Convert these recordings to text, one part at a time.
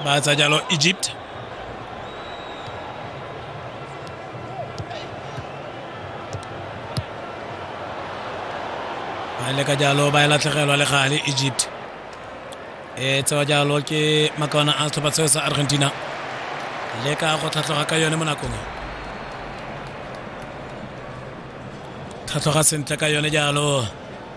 ba tsa jalo egypt ba ile ka jalo ba e latlhegelwa le gale egypt e tsewa jalo ke makawana a setlhopha seo sa argentina le ka go tlhatlhoga ka yone mo nakong e tlhatlhoga sentle ka yone jalo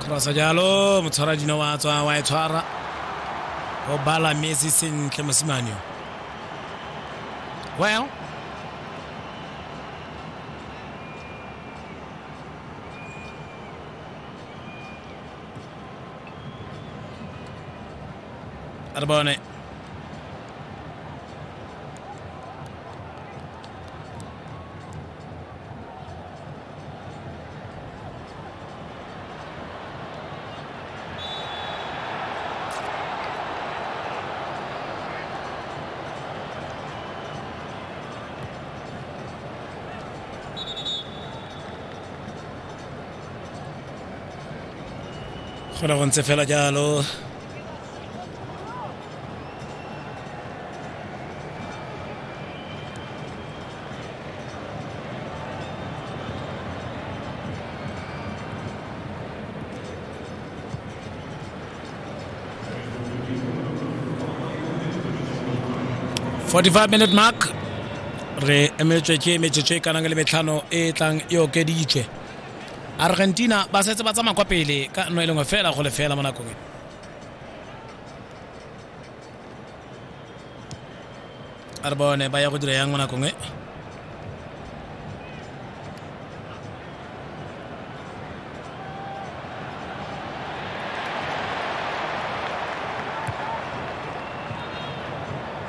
crossa jalo motshwara dino wa tswa wa e tshwara o bala messi sentle mosimane o well re bone go ntse fela jalo 45 minute mark re emetswe ke metsotso e kanang le metlhano e e tlang e okeditswe argentina ba setse ba tsamaya kwa pele ka nno e lengwe fela go lefela mo nakong e a re bone ba ya go dira yang mo nakong e